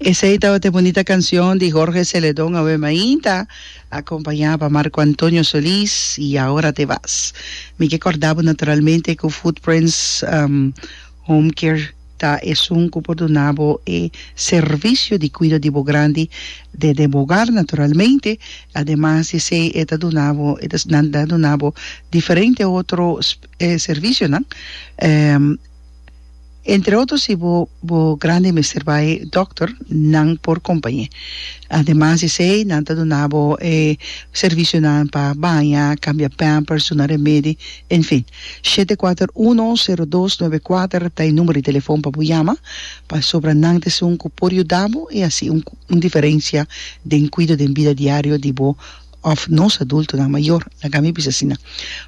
Esey tabata e bonita cancion di Jorge Celedon awe mainta, acompaña pa Marco Antonio Solis y Ahora te vas. Mi ke corda bo naturalmente cu Footprints um, Home Care ta esun cu por duna bo e servicio di cuido di bo grandi dende bo hogar naturalmente. Ademas di esey e ta duna bo, e ta, nan ta duna bo diferente otro servicio nan. Um. Entre otro si bo bo grandi mester bai dokter nan por kompañe. Ademas di esei nan ta duna bo e servisionan pa baña, kambia pampers, duna remedi, en fin. Shete kuater uno sero dos nuebe kuater ta e numero di telefòn pa bo yama pasobra nan ta esun ku por yuda bo i hasi un diferensia den kuido den bida diario di bo òf nos adultonan mayor, laga mi bisa asina.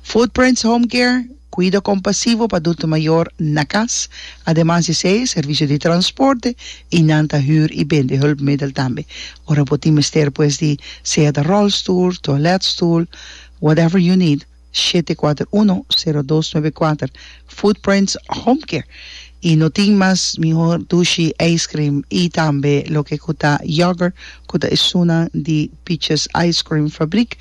Footprints Home Care, Kuido kompasivo pa adulto mayor na kas. Ademas di esei, servisio di transporte i nan ta hür i bende hulpmiddel tambe. Ora bo tin mester pues di sea ta rolstoel, toiletstoel, whatever you need, shete kuater uno sero dos nuebe kuater Footprints Home Care y no tin mas mihor dushi ice cream y tambe loke ku ta yoghurt ku ta esunnan di Peaches Ice Cream Fabriek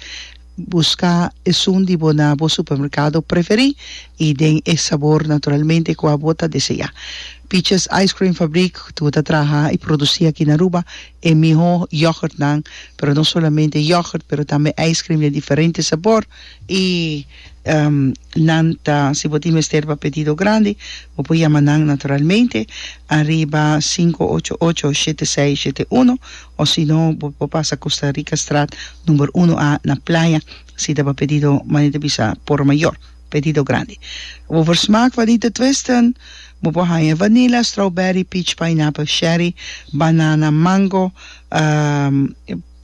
buska esun di bo na bo supermerkado preferí y den e sabor naturalmente ku abo ta deseá Peaches Ice Cream Fabriek ku ta traha y produsí aki na Aruba. e mihó yògùrtnan, pero no solamente e yògùrt, pero tambe ijskrim den diferente sabor, i nan ta, si bo tin mester pa pedido grandi, bo por yama nan naturalmente ariba sinku ocho ocho shete seis shete uno, òsino bo por pasa Costa Rica straat number uno A na Playa, si ta pa pedido manera ta bisa por mayor. Pedido grandi. Bo por smak vanita twisten. Bo por haña vanila, strawberry, peach, pineapple, sherry, banana, mango,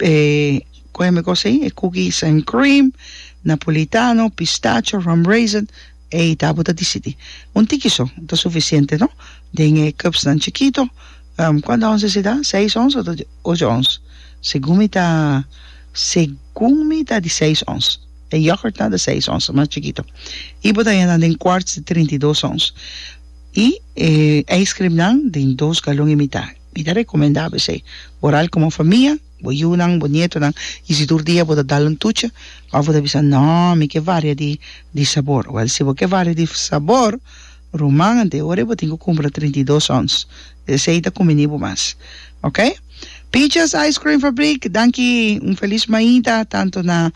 e koe mi kos ei? E cookies and cream, napolitano, pistacho, rum raisin, ei ta bo ta disidi. Un tiki so ta sufisiente no den e cupsnan chikito. Kuanta ons esi ta? Seis ons o ta ocho ons? Segun mi ta segun mi ta di seis ons. E yògùrt nan ta seis ons, mas chikito. I bo ta haña nan den kwarts di trinta i dos ons. I e ijskrim nan den dos galon i mitá. Mi ta rekomendá besei bo ral komo famia, bo yunan, bo nietonan, i si tur dia bo ta dal un tuchi òf bo ta bisa, Nò, mi ke varia di sabor. Wèl, si bo ke varia di sabor, Ruman, ante ora bo tin cu cumpra trinta i dos ons. Desey ta cuminibo mas. Ok. Picha's Ice Cream Fabriek, danki. Un feliz maita tanto na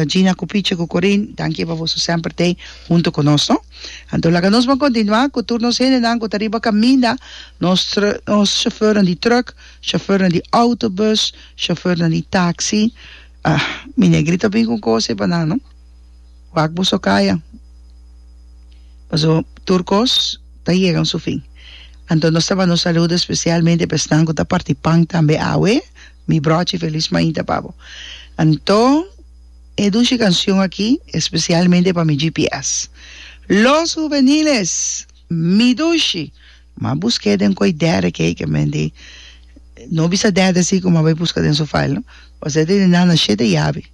Gina cu Picha cu Corin. Danki pa boso semper tey hunto cu nos, no. Anto laga nos ban continua cu tur nos hendenan cu ta riba caminda, nos nos chauffeurnan di truck, chauffeurnan di autobus, chauffeurnan di taxi. Ah, mi negrito a bin cu un cosa ey pa nan, no. Wak boso kaya, paso tur kos ta yegan su fin. Anto nos ta bando saludo espesialmente pa esnan ku ta parti pan tambe awe, mi brochi felis mainta pa bo. Anto e dushi kanshon aki espesialmente pa mi GPS. Los huveniles, mi dushi, ma busk'é den ko'i derde kei ke men di, no bisa derde si kuma bai buska den su fail no, ose te di nana shete yabi.